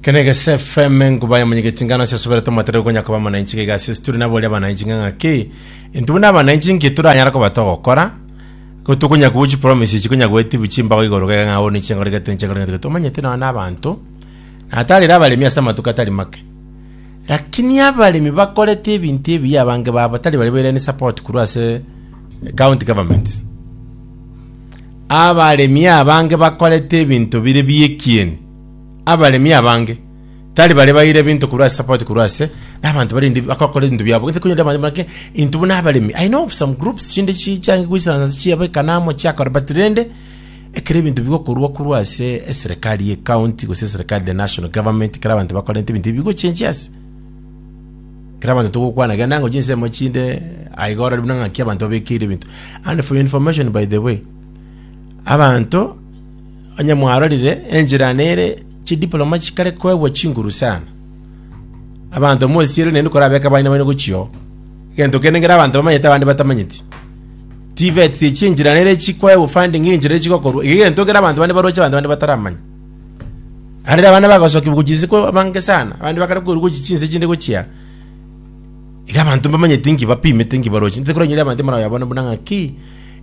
kenege sfm nguba ya monyegeti ngano ase asubere tomatere gonya koba mwananchi gaiga ase situri nabo oria abananchi ng'ang'a ki intubu na abananchi nki turanyara koba togokora gotukonya kubu chipromise ichi konya gwetibu chimbago igoro gaiga ng'a one chingori gete nchigori gete tomanyete nonya na abanto natarire abaremi ase amatuko atari make lakini abaremi bakorete ebinto ebiya abange babo tari bari bairani support korwa ase county government Abaremi abange bakorete ebinto bire bi'ekieni. Abaremi abange tari bare baire ebinto korwa ase sapoti korwa ase nabanto barende bakokora ebinto biabo. Gete konyora abanto bake intwe buna abaremi. I know of some groups chinde chi chiange goisaransa ase chiabekana amo chiakora but rende ekero ebinto bigokorwa korwa ase eserekari ye county gose eserekari the national government ekero abanto bakorente ebinto ebi bigochenchia ase. Kera abanto togokwana genda ngochie nsemo chinde aye iga orore buna ng'aki abanto babekeire ebinto. And for your information by the way, abanto onye mwarorire enchera nere chidiploma chikare koegwa chinguru sana. Abanto mosiere naende korabeka abana baino gochio. Egento kende ngera abanto bamanyete abande batamanyeti. TVETs echi enchera nere chikoegwa funding enchera chigokorwa. Iga egento kera abanto bande baroche abanto bande bataramanya. Arere abana bagosokigwa gochia ise kwa bange sana, abande bakare korwa gochia chinse chinde gochia. Iga abanto mbamanyete inki bapimete inki baroche. Nte koronyire abanto maraye abana buna ng'aki,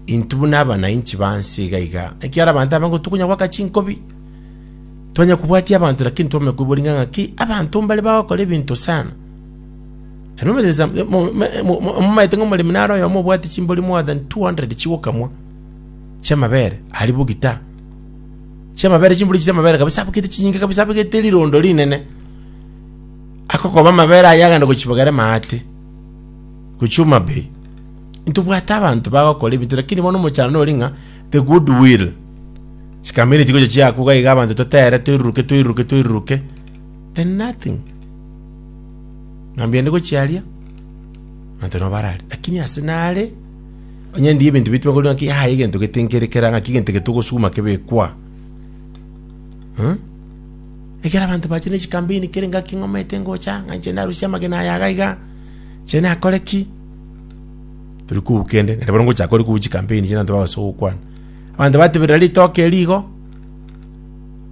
intwe buna abananchi banse iga iga. Ekiara abanto abange tokonya goaka chinkobi, twanya kobwatia abanto lakini twamanya koigwa ring'ana ng'aki, abanto mbare bagokora ebinto sana. Ero omanyete sa- mo- me- mo- mo- momaete ng'a omoremi naro oyomo obwati chimbori more than 200 chigokamwa, chiamabere, aria bogita. chi'amabere, chimbori chi'amabere kabisa, abagete chinyinge kabisa, abagete rirondo rinene. Akokoba amabere aya agende gochibogera emate, gochia Homa Bay. Ntobwate abanto bagokora ebinto, lakini bono omochando nori ng'a the good will. Chikamere chigocha chiakuga iga abanto totere, toiruruke, toiruruke, toiruruke, then nothing. Ng'ambia ndi gochia aria, abanto nabo baraaria, lakini ase nare, Onye ndi ebinto bitime korende ng'aki yaya egento gete nkere kera ng'aki egento gete ogosuguma kebekwa. Hmm? Ekero abanto bache ne chikampeni kere ngaki ng'omete ngocha ng'anche narusia amagena aya iga iga nche nakore ki tori kobua kende nere bono ngochaka ore kobua chikampeni chire abanto bagosa gokwana abanto bateberera ritoke eri igo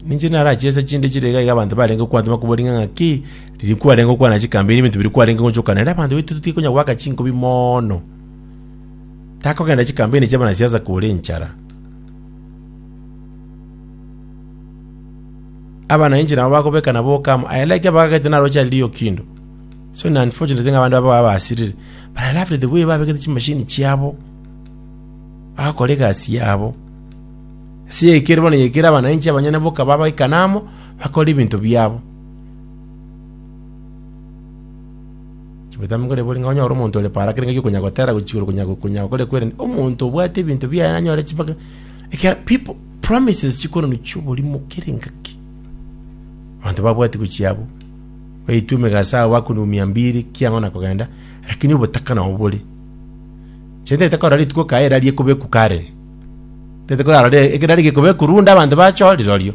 ninche narachie ase chinde chire iga iga abanto barenge kwantima kobua ring'ana ki Riria kwarenge gokwana chikambi, ebinto biria kwarenge gochokana, ere abanto baito totige konya goaka chinkubi mono. Takogenda chikambi ene chi'abanasiasa kore enchara. Abananchi nabo bagobeka nabo okamo. I like abagagete naro Charlie Lee Okindo. So ni unfortunate ng'a abanto baba babasirire. But I loved the way babegete chimashini chiabo. Bagakora egasi yabo. Ase yaikire bono yaikire abananchi abanyene boka babaikana amo, bakore ebinto biabo. Chibotambe nkore bori ng'a onyore omonto ore para kere ng'aki okonya gotera gochia igoro konya konya gokore kwere omonto obwate ebinto biaye nanyore chibaka ekiagera people promises chikorwa chi'oborimo kera engaki abanto babwati gochia abwo baitwe emegasa yabo bakunigwa mia mbiri ki ang'o na kogenda lakini obotaka nabo bore inche ntagete korora rituko kaye erari ekobekwa Karen ntagete korora ekero riaria gekobekwa runda abanto bachore rirorio.